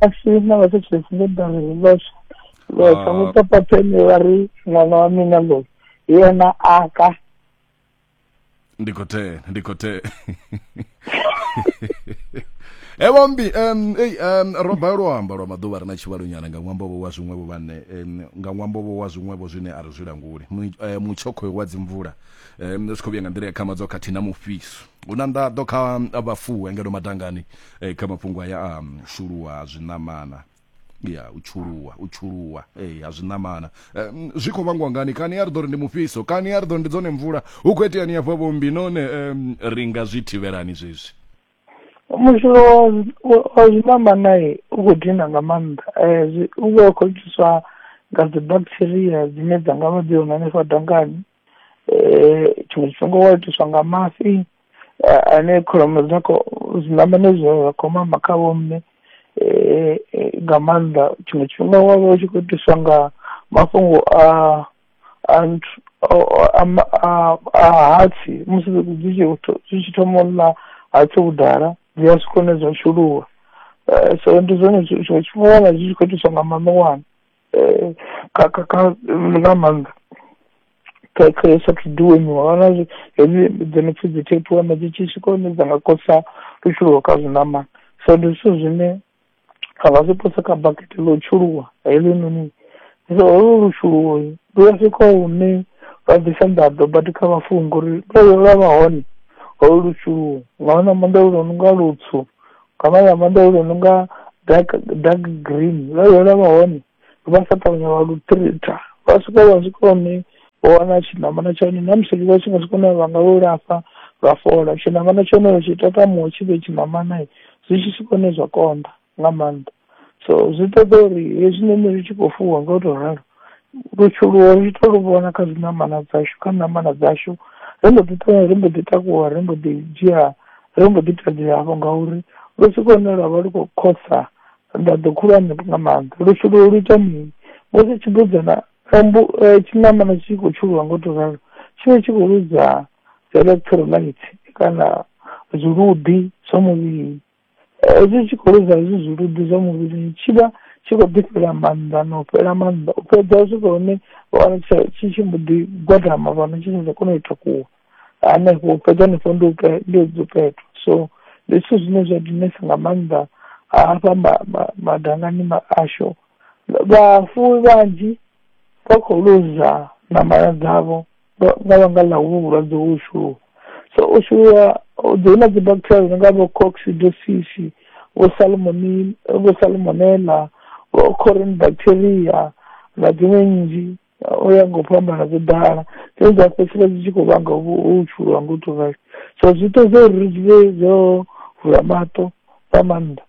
asi na vasetresi ndo dara hi voxe voxa Ah. n'wi papapheni va ri n'wana wa mina loyi hi yena aka ndi khou tea ndi khou tea evo mbi um, ei, um, ro balelwa u amba lwa maḓuvha ri na tshivhalonyana nga ṅwambo-vho wa zwiṅwevho vhane um, nga ṅwambo-vho wa zwiṅwevho zwine a ri zwi languli Mu- eh, mutshokhoyo wa dzimvula um, zwi khou vhuya nga nḓila ya khamadzo khathihi na mufhiso hu na nḓaḓo kha vhafuwi ngeno madangani e, kha mafhungo aya a um, shuluwa ha zwiṋamana ya u tshuluwa u tshuluwa ee ha zwiṋamana um, zwi khou vhangwa ngani kani a ri ḓo ri ndi mufhiso kani a ri ḓo ndi dzone mvula hu khou iteani hafha vhombi none um, ri nga zwi thivhelani zwezwi mushulo wa zwiṋamana u khou dina nga maanḓa um u vha u khou itiswa nga dzi bacteria dzine dza nga vha dzi hone hanefha dangani tshiṅwe tshifhinga u wa itiswa nga mafhi a- ane kholomo dza kho zwiṋamane zwa zwa khou mama kha vho mme eh, eh, nga maanḓa tshiṅwe tshifhinga wa vha u tshi khou itiswa nga mafhungo a a nthu- o- o- a ma- a- a hatsi musi dzi tshi tho- dzi tshi thoma u ḽa hatsi vhudala dzi a swika hune dza shuluwa Eh, so ndi zwone zwi- zwiṅwe tshifhinga wana zwi tshi khou itiswa nga maṋowana eh, kha kha kha nga maanḓa kha kha yo sa thu duwemiwa vhana zwi hedzi dzi no pfi dzi thephi wana dzi tshi swika hune dza nga kosa lutshuluwo kha zwiṋamana so ndi zwithu zwine a vha zwi pose kha bakete ḽo tshuluwa heḽinoni so holo lushuluwo lu a swika hune lwa bvisa nḓaḓo badi kha vhafunga uri lwo lwa vha hone holo lushuluwo nga wana maanḓa lu no nga lutswu kha vha ya Venḓa yo no nga, dark dark green vha ye vha vha hone, vha sa ṱavhanya vha lu tritha, vha swika vha swika hune vha wana tshi namana tsha hone ṋamusi vha tshi nga swika hune vha nga lu laṱa lwa fhola, tshiṋamana tsha hone vha tshi takamuwa tshi vhe tshiṋamana zwi tshi swika hune zwa konḓa nga maanḓa. so zwi ṱoḓa uri hezwinoni zwi tshi khou fuwa nga u to ralo, lutshuluwo ri to lu vhona kha zwiṋamana dzashu kha ṋamana dzashu, ri mbo ḓi ṱuwa ri mbo ḓi takuwa ri mbo ḓi dzhia, ri mbo ḓi tevhela hafho ngauri lu swika hune lwa vha lu khou khosa nḓaḓo khulwane nga maanḓa. Lutshuluwo lu ita mini, musi tshibudzana tshambo tshiṋamana tshi khou tshuluwa nga u to ralo, tshi vha tshi khou ḽuza dzi electrolyte kana zwiluḓi zwa muvhili. hezwi tshi khou lozwa hezwi zwiludi zwa muvhilini tshi vha tshi khou ḓi fhela maanḓa na u fhela maanḓa u fhedza u swika hune vha wana tsha tshi tshi mbo ḓi gwadama fhano tshi tsha kona u takuwa hanefho u fhedza hanefho ndi u pe- ndi u dzupetwa so ndi zwithu zwine zwa dinesa nga maanḓa hafha ma- ma- madangani ma- ashu vhafuwi vhanzhi vha khou luza ṋama dzavho nga nga vhanga ḽa hovhu vhulwadze ho shuluwa. So u shuluwa hu ḓi huna dzi bacteria dzi no nga vho Coccidiosis, vho Salmonel-, vho Salmonella, vho Corium bacteria na dziṅwe nnzhi, u ya nga u fhambana dzo ḓala. Dzine dza fhedzisela dzi tshi khou vhanga hovhu ho shuluwa nga u to rali. So zwi ṱoḓa uri ri dzule ro vula maṱo, nga maanḓa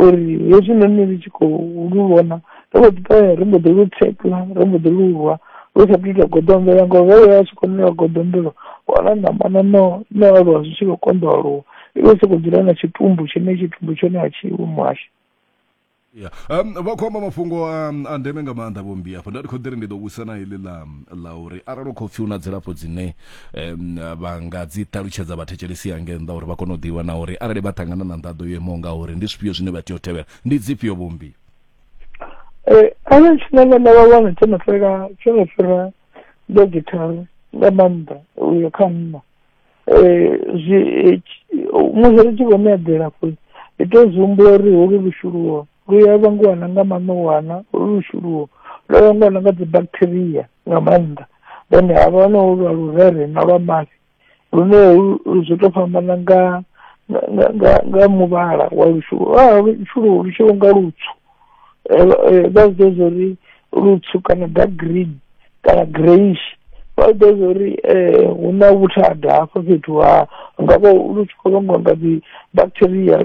uri hezwi noni ri tshi khou lu vhona ri mbo ḓi ṱoya ri mbo ḓi lu tshekla ri mbo ḓi lu rwa lu sa thu ita goḓombela ngori ro vhuya tshi khou ṋewa goḓombelo wana ṋamana no no aluwa zwi tshi khou konḓa aluwa i vha i sokou dzula na tshitumbu tshine tshitumbu tshone a tshi iwi muhasho ya um, vha khou amba mafhungo um, a ndeme nga maanḓa vhombi afho nda ndi khou ḓiri ndi ḓo vhusa na iḽi ḽa ḽa uri arali u khou pfhi u na dzilafho dzine um, vha nga dzi ṱalutshedza vhathetshelesi ya nge nnḓa uri vha kone u ḓivha na uri arali vha ṱangana na nḓaḓo yo imaho nga uri ndi zwifhio zwine vha tea u tevhela ndi dzifhio vhombi um arali tshine vhana vha wana tsho no fhela tsho no fhira nga githara nga maanḓa uyo kha nna Eh, zwi eh, tshi- oh, musi ri tshi khou ṋea dzilafho ri tea u zwi humbula uri holu lushuluwo lu ya vhangiwa na nga maṋowana holu lushuluwo lu ya vhangiwa na nga dzi bacteria nga maanḓa then ha vha na holu lwa lurere na lwa mafhi lune holu- lu zwi tou fhambana nga nga- nga nga nga muvhala wa lushuluwo a lushuluwo lu tshi vho nga lutswu eh, vha zwi ḓivha uri lutswu kana dark green kana greyish vha zwi ḓivha uri eh, hu na vhuthada hafho fhethu ha nga vha lu tshi khou vhangwa nga dzi bacteria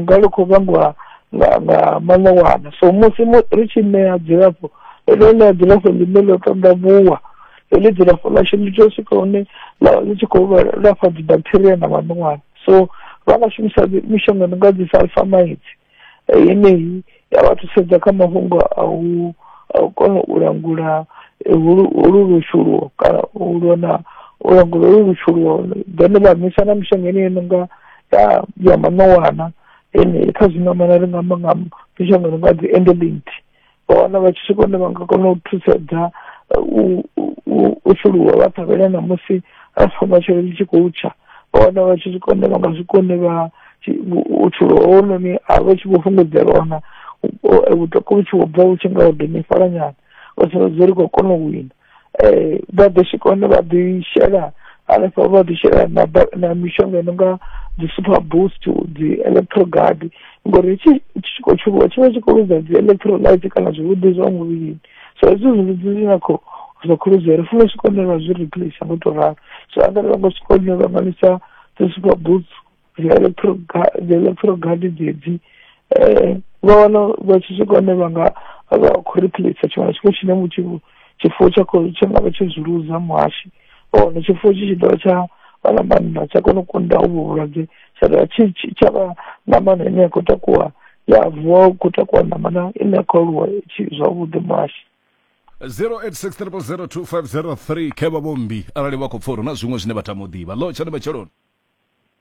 nga lu khou vhangwa nga nga maṋowana so musi ri tshi ṋea dzilafho ḽo ṋea dzilafho ḽine ḽo tandavhuwa heḽi dzilafho ḽashu ḽi tea u swika hune ḽi tshi khou lafha dzibacteria na maṋowana so vha nga shumisa mishonga ndi nga dzi sulfamides yeneyi ya vha thusedza kha mafhungo a u a u kona u langula eh, holu holu lushuluwo kana u lona u langula holu lushuluwo then vha misa na mishonga ine ino nga ya ya maṋowana ene kha zwiṋamana ri nga amba nga mishonga no nga dzi endelint vha wana vha tshi swika hune vha nga kona u thusedza u u- u fhuluwa vha ṱhavhela na musi afha matshelo ḽi tshi khou tsha vha wana vha tshi swika hune vha nga swika hune vha tshi- u- u thuluwa hounoni a vha tshi vho fhungudzelwa wana vhuṱoka vhu tshi vho bva vhu tshi nga ho domifhala nyana vha sumbedza uri khou kona u wina um vha ḓo swika hone vha ḓi shela hanefho vha ḓi shela na ba- na mishonga i no nga dzi super boost dzi electrogard ngori tshi tshi khou tshuviwa tshi vha tshi khou lwisa dzi electrolyte kana zwivhuḓi zwa muvhilini so hezwi zwivhuḓi zwi nga khou zwa khou lwisa ri funa swika hone vha zwi replace ngo to ralo so arali vha nga swika hone vha ṅwalisa dzi super boost dzeḽo phurogadi dzeḽo phurogadi dzedzi um vha wana vha tshi swika hone vha nga vha khou replace tshiṅwe na tshiṅwe tshine mutshi tshifuwo tsha khou tsha nga vha tshi zwi luza muhashi vha wana tshifuwo tshi tshi dovha tsha vha na mannḓa tsha kona u kunda uvho vhulwadze tsha dovha tshi tsha vha ṋamana ine ya khou takuwa ya vuwa u khou takuwa ṋamana ine ya khou aluwa tshi zwavhuḓi muhashi 0863002503 khe vha vho mmbi arali vha khou pfha uri na zwiṅwe zwine vha tama u ḓivha lo tshani matsheloni